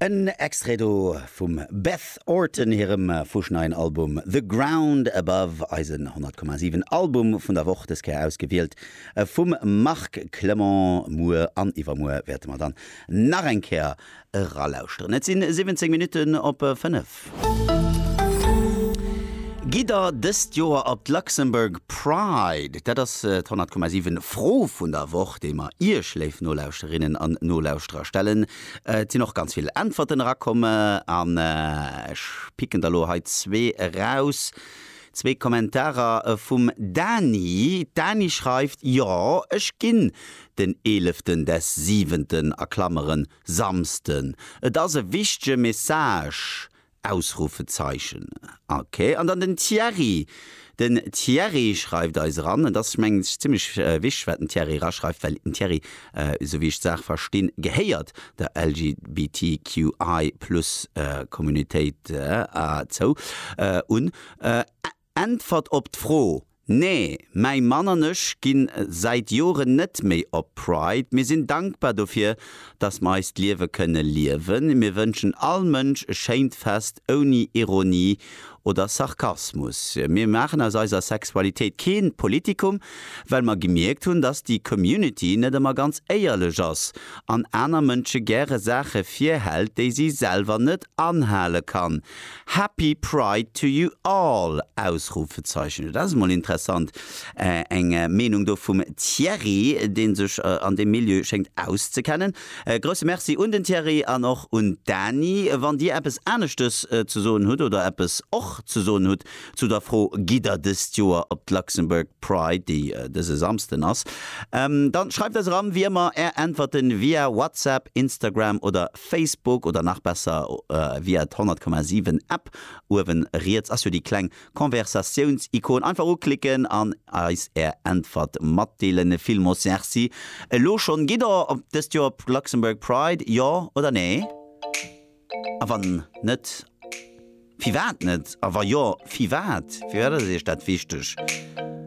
En Extrait do vum Beth Orton hirem fuschneien Album The Ground Above, eisen 100,7 Album vun der Woch, des Kéier ausgewielt vum Marc Clement. Muer an iwwermuer wäerte mer dann nach eng Kéier eralauschteren. Et si 17 Minutten op 5. Gitt der dëst Joer op d'Luxembourg Pride? Dat ass d'Honnert Komma Siwen Fro vun der Woch, déi mer Iech, léif Nolauschterinnen an Nolauschterer, stellen. Et sinn och ganz vill Äntwerten erakomm an ech picken der elo hei zwee eraus. Zwee Kommentarer vum Dany. D'Dany schreift, Jo, ech ginn den eeleften des siwenten, a Klameren, Samsten, et ass e wichtege Message! Ausrufezeichen Ok, an dann den Thierry. Den Thierry schreift eis eran, et ass mengen ech zimmlech wichteg wat den Thierry eraschreift, well den Thierry, esou wéi ech d'Saach verstinn, gehéiert der LGBTQI Plus Communautéit zou un. Äntwert op d'Fro, Nee, mäi Mann an ech ginn säit Joren net méi op Pride. Mir sinn dankbar dofir, dass mer eist Liewe kënne liewen. Mir wënschen all Mënsch e schéint Fest ouni Ironie oder Sarkasmus. Mir maachen aus eiser Sexualitéit kee Politikum, well mer gemierkt hunn, dass déi Community net ëmmer ganz éierlech ass an aner Mënsche gäre Saache virhält, déi si selwer net anhale kann. Happy Pride to you all! Ausrufezeichen Hut ass emol interessant, eng Meenung do vum Thierry, deen sech an deem Milieu schéngt auszekennen. Grousse Merci un den Thierry an och un d'Dani. Wann dir eppes aneschtes ze soen hutt oder eppes och ze soen hutt zu der Fro, Gitt der dëst Joer op d'Luxembourg Pride, déi dëse Samsden ass? Dann schreift eis eran, wéi ëmmer, är Äntwerten via WhatsApp, Instagram oder Facebook oder nach besser via d'Honnertkommasiwwen App. Uewen riets ass jo déi kleng Konversatiounsikon. Einfach uklicken an eis är Äntwert matdeelen. Villmols Merci elo schonn. Gitt der dëst Joer op Luxembourg Pride? Jo oder nee? A wann net, firwat net? A wa jo, firwat? Firwat ass Iech dat wichteg?